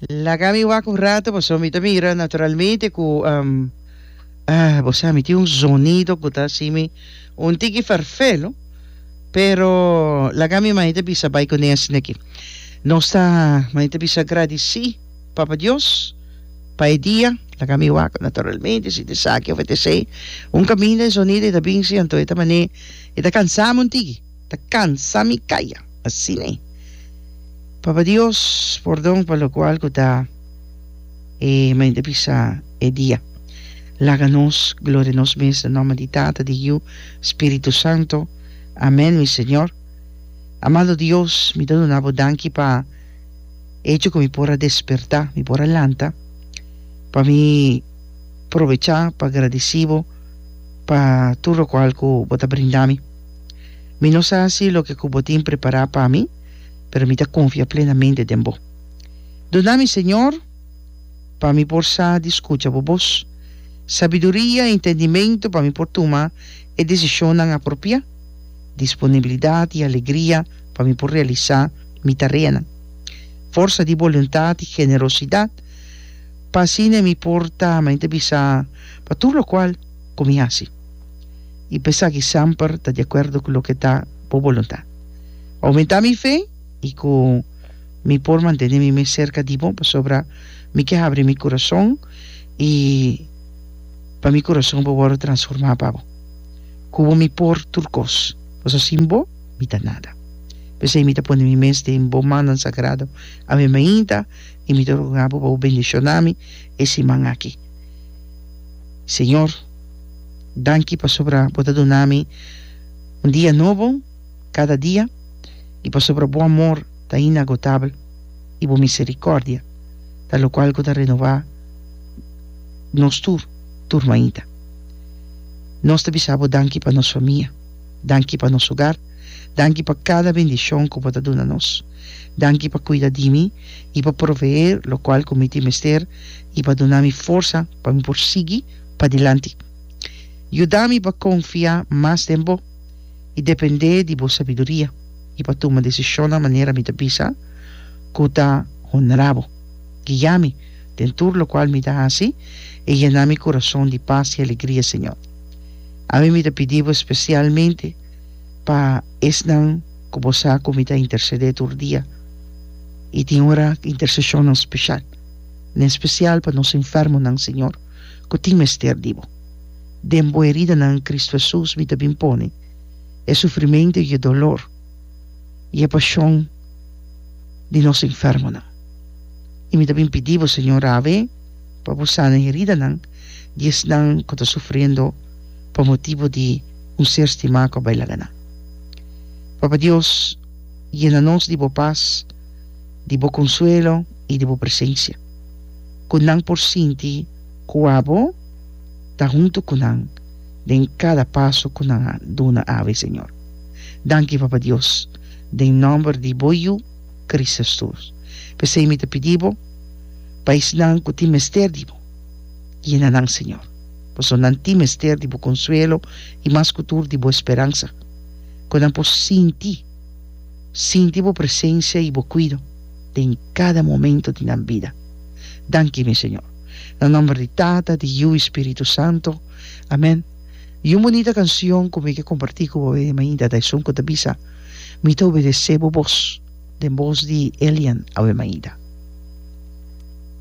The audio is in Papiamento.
Laga mi wak un rato paso mi ta mira naturalmente cu um, ah, bo sa mi tin un zonido cu ta asimi un tiki farfelo pero laga mi mane ta bisa bai cu nesne aki nos ta mane ta bisa gradici papa dios pa e dia laga mi wak naturalmente si ta esaki of ta esei un caminda e zonido e ta binsi anto e ta mane e ta cansami un tiki ta cansa mi caya asina e papa Dios pordon pa locual cu ta e mente bisa e dia laga nos gloria nos mes na nomber di tata di yu spiritu santo amen mi señor amado Dios mi ta duna bo danki pa echo cu mi por a desperta mi por a lanta pa mi probecha pa gradicibo pa tur locual cu bo ta brindami. Mi no sa si loke ku bo tin prepará pa mi, pero mi ta konfia plenamente den bo. Duna mi, Señor, pa mi por sa di skucha bo bos, sabiduria i entendimentu pa mi por tuma e desishonnan apropiá, disponibilidat i alegria pa mi por realisá mi tareanan, forsa di boluntat i generosidat pa asina mi por ta, men ta bisa pa tur lokual ku mi hasi. i p'esaki semper ta di akuerdo ku loke ta bo boluntat. Oumentá mi fe i ku mi por mantené mi mes serka di bo, pasobra mi ke habri mi kurason i pa mi kurason por wòrdu transformá pa bo. Ku bo mi por tur kos, pasobra sin bo mi ta nada. P'esei mi ta pone mi mes den bo mannan sagrado awe mainta i mi ta roga bo pa bo bendishoná mi e siman aki, Señor. Danki pasobra bo ta duna mi un dia nobo kada dia, i pasobra bo amor ta inagotabel, i bo miserikòrdia ta lokual ku ta renová nos tur, tur mainta. Nos ta bisa bo danki pa nos famia, danki pa nos ogar, danki pa kada bendishon ku bo ta duna nos. Danki pa kuida di mi i pa proveé lokual ku mi tin mester i pa duna mi forsa pa mi por sigui Padilanti. Yuda mi pa konfiá mas den bo i dependé di bo sabiduria i pa tuma desishonnan manera mi ta bisa ku ta honrá bo. Guiá mi den tur lokual mi ta hasi i yena mi kurason di pas i alegria, Señor. Ami mi ta pidi bo spesialmente pa esnan ku bo sa ku mi ta intersedé tur dia i tin ora interseshonnan speshal, n'en spesial pa nos enfermonan, Señor. ku tin mester di bo. Den bo eridanan Kristu Hesus mi ta bin pone e sufrimentu i e dolor i e pashon di nos enfermonan. I mi ta bin pidi bo, Señor Rawe, pa bo sana e heridanan di esnan ku ta sufriendo pa motibu di un ser stimá ku a bai laga nan. Papa Dios, yena nos di bo pas, di bo konsuelo i di bo presensia. ku nan por sinti kua bo ta huntu ku nan den kada paso ku nan a duna abi, Señor. Danki, Papa Dios, den nòmber di bo Yu, Kris Hesus. P'esei mi ta pidi bo pa esnan ku tin mester di bo, yena nan, Señor, pasobra nan tin mester di bo konsuelo i mas ku tur di bo speransa, ku nan por sinti sinti bo presensia i bo kuido. den cada momento di nan bida. Danki mi Señor. Na nomber di Tata, di Yu i Spiritu Santo. Amen. I un bunita cancion cu mi ke comparti cu bo e mainta ta esun cu ta bisa, Mi ta obedece bo bos, den bos di Elian awe mainta.